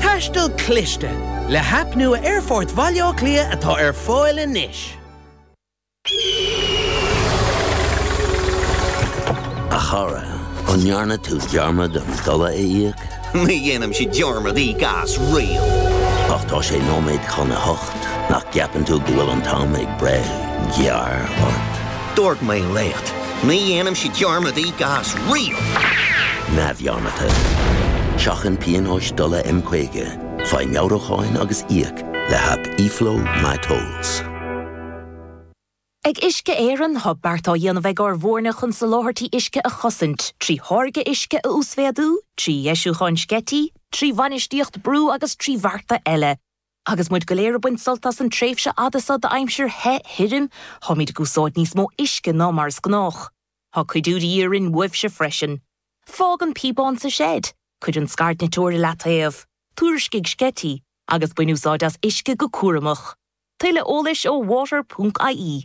Taisteal cliste, le haip nua Aerfort Bhaile Átha Cliath atá ar fáil anois. A chara, an ndearna tú dearmad an dola a íoc? Ní dhéanaimse dearmad íoc as riamh. Ach tá sé nóiméad chun a hocht, nach gceapann tú go bhfuil an t-am ag breith gearr ort? Dúirt mé leat, ní dhéanaimse dearmad íoc as riamh! neamhdhearmadta. Seachain pionóis dola M50, faigh meabhrúcháin agus íoc le haip eFlow MyTolls. Ag Uisce Éireann tá beart á dhéanamh ag ár bhfoirne chun soláthairtí uisce a chosaint, trí tháirgeadh uisce a uasmhéadú, trí dheisiúcháin sceití, trí bhainistíocht brú agus trí bhearta eile. Agus muid go léir ag baint sult as an tréimhse fhada seo d'aimsir the, thirim, táimid ag úsáid níos mó uisce ná mar is gnách. Tá cuidiú de dhíth orainn uaibhse freisin. Fág an píobán sa seid, cuir an scairdniteoir i leataobh, tuairiscigh sceití, agus bain úsáid as uisce go cúramach. Tuilleadh eolais ó water ponc ie.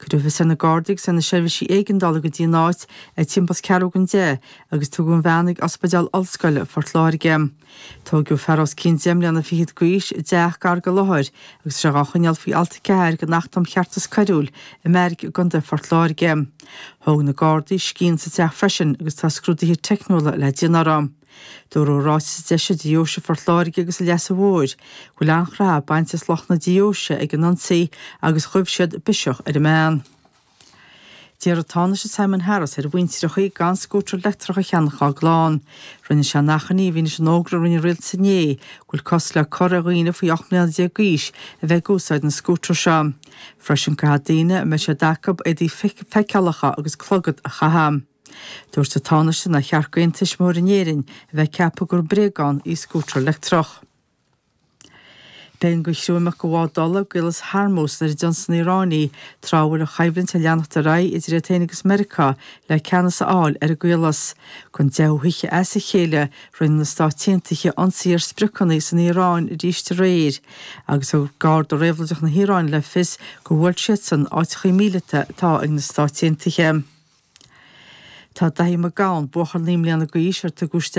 Cuireadh fios ar na Gardaí agus ar na seirbhísí éigeandála go dtí an áit ag timpeall is ceathrú don deich agus tugadh an bhean ag Ospidéal Ollscoile Phort Láirge. Tóigeadh fear os cionn deich mbliana fichead d'aois i dteach gar don láthair agus tá sé dhá choinneáil faoi Alt 4 den Acht um Cheartas Coiriúil i mbeairic i gContae Phort Láirge. Thóg na Gardaí scian sa teach freisin agus tá scrúduithe teicniúla le déanamh uirthi. Dúradh i ráiteas a d'eisigh Deoise Phort Láirge agus an Leasa Mhóir go bhfuil an-chroitheadh bainte as lucht na Deoise ag an ionsaí agus ghuigh siad biseach ar an mbean. D'iarr an Tánaiste Simon Harris ar mhuintireachaí gan scútar leictreach a cheannach dhá gclann. Rinne sé an achainí i bhfianaise an fhógra a rinne an rialtas inné go bhfuil cosc le cur ar dhaoine faoi 18 mbliana d'aois a bheith ag úsáid na scútar seo. Freisin caithfidh daoine a mbeidh siad acu éadaí feiceálacha agus clogad a chaitheamh. Dúirt an Tánaiste nár cheart d'aon tuismitheoir in Éirinn a bheith ag ceapadh gur bréagán í scútar leictreach. B'éigean do chriú imeacht de bhád ola i gCaolas Hormuz nuair a d'ionsaigh an Iaráin í tráth a bhfuil an choimhlint ag leanacht ar aghaidh idir iad féin agus Meiriceá le ceannas a fháil ar an gcaolas. Don deichiú hoíche as a chéile, rinne na Stáit Aontaithe ionsaí ar spriocanna san Iaráin arís aréir agus thug Garda Réabhlóideach na hIaráine le fios gur bhuail siadsan áiteachaí míleata atá ag na Stáit Aontaithe. Tá Daithí Mac Gabhann, buachaill naoi mbliana d'aois ar tugadh isteach